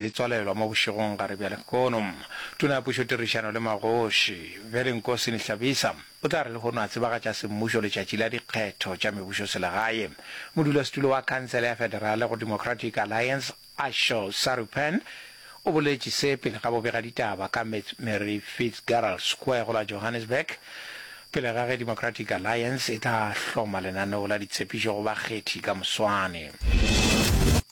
e tswalelwa mo bošegong gare bja lehono. Tona ya Pušo Tirišano le Magoši, Bjale Nkosi Nihlabisa, o tla re lehono a tsebagatša semmušo letšatši la dikgetho tša mebušoselegae. Modulasetulo wa Khansele ya Federale go Democratic Alliance, Asho Sarupen, o boletše se pele ga bobegaditaba ka Ms. Mary Fitzgerald Square go la Johannesburg, pele ga ge Democratic Alliance e tla hloma lenaneo la ditshepišo go bakgethi ka moswane.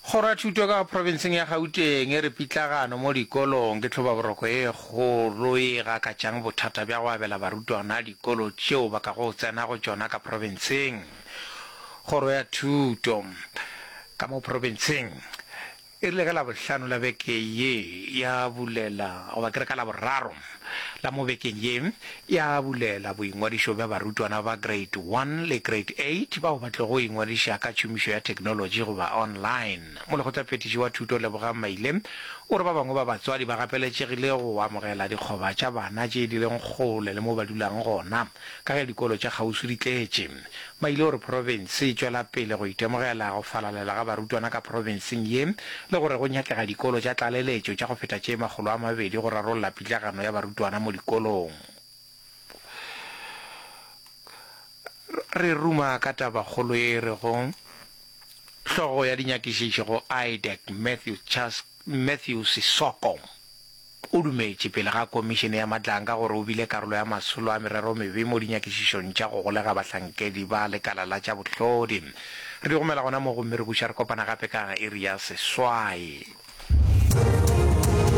Kgoro ya Thuto ka profenseng ya Gauteng e re pitlagano mo dikolong ke tlhobaboroko e kgolo ye e gakatšang bothata bja go abela barutwana dikolo tšeo ba ka go tsena go tšona ka profenseng. Kgoro ya Thuto ka mo profenseng e rile ka Labohlano la beke ye ya bulela, goba ke re ka Laboraro, la mo bekeng ye ya bulela boingwadišo bja barutwana ba Grade One le Grade Eight bao ba tlogo ingwadiša ka tšhomišo ya theknolotši goba online. Molekgotlaphethiši wa Thuto Lebogang Maile o re ba bangwe ba batswadi ba gapeletšegile go amogela dikgoba tša bana tše di leng kgole le mo ba dulang gona. Ka ge dikolo tša kgauswi di tletše, ba ile go re profense e tšwela pele go itemogela go falalela ga barutwana ka profenseng ye le gore go nyakega dikolo tša tlaleletšo tša go feta tše makgolo a mabedi go rarolla pitlagano ya barutwana mo dikolong. Re ruma ka tabakgolo ye e rego Hlogo ya dinyakišišo go IDEC, Matthew Sissoko. O dumetše pele ga Komišene ya Matlanka gore o bile karolo ya masolo a mereromebe mo dinyakišišong tša go golega bahlankedi ba lekala la tša bohlodi. Re di gomela gona mo gomme re buša re kopana gape ka iri ya seswai.